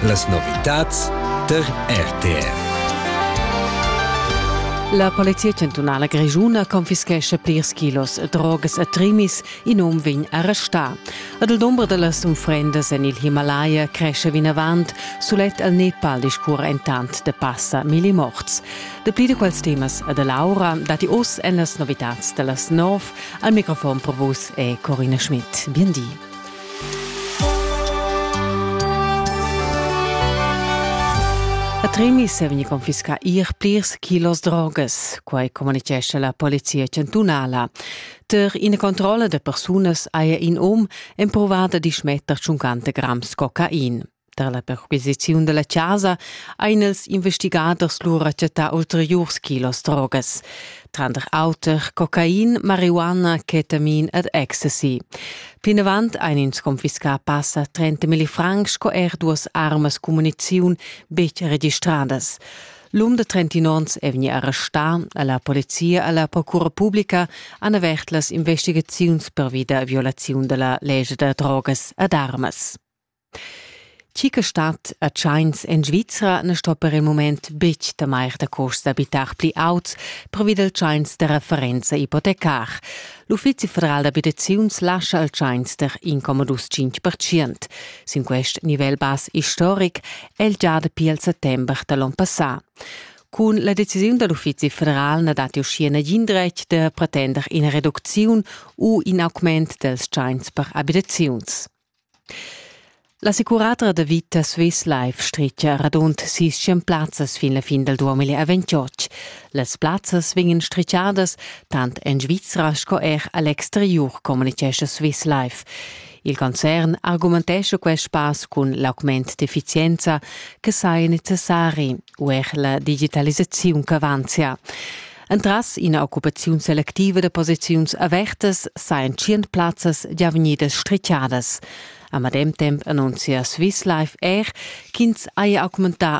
Las novitads tar RTR. La Polizia chantunala grischuna confischescha plirs kilos drogas e trimis, in um vegn arrestà. Ad il dumber da las unfrendas en il Himalaya cresce vinavant, sulet al Nepal discurre intant de passa milli morts. Dapli di quels temas a Laura dati oz en las novitads da las 9. Al microfon per vus è Corina Schmidt. Bien di. A Tremis è vegnì confiscà ir plirs kilos drogas, quai communitgescha la polizia chantunala. Tar ina controlla da persunas haja in um empruvà da dismetter tschuncanta grams cocain. Tar la perquisiziun da la chasa ein ils investigaders lura chattà ulteriurs kilos drogas, tranter auter cocain, marihuana, ketamin ed ecstasy. Plinavant ein ins confiscà passa 30 milli francs sco er duas armas cummuniziun betg registradas. L'um de 30 onns è vegnì arrestà a la polizia e alla procura pubblica han avert las investigaziuns pervi da violaziun da la legge da drogas ed armas. Chi che stat a tschains en Svizra na sto per il mument betg temair da curs d'abitar pli auts pervi dal tschains da referenza ipotecar. L'Uffizi federal d'abitaziuns lascha il tschains der incomodus 5%. Sin quest nivel bas istoric è il già dapi il settembre da l'onn passà. Cun la decisiun da l'Uffizi federal na datti uschia nagin dretg da pretender ina reducziun u in augment dals tschains per abitaziuns. L'assicuratura da vita Swislife stretga radund sis tschient plazzas fin la fin dal 2028. Las plazzas vegnan stretgadas tant en Svizra sco er a l'exteriur, communitgescha Swislife. Il concern argumentescha quest pass cun l'augment d'effizienza che saja necessari u er la digitalisaziun ch'avanzia. Entras ina occupaziun selectiva da posiziuns avertas sajan tschient plazzas gia vegnidas strichadas. A medem temp annunzia Swiss Life Air ch'ins haja augmentà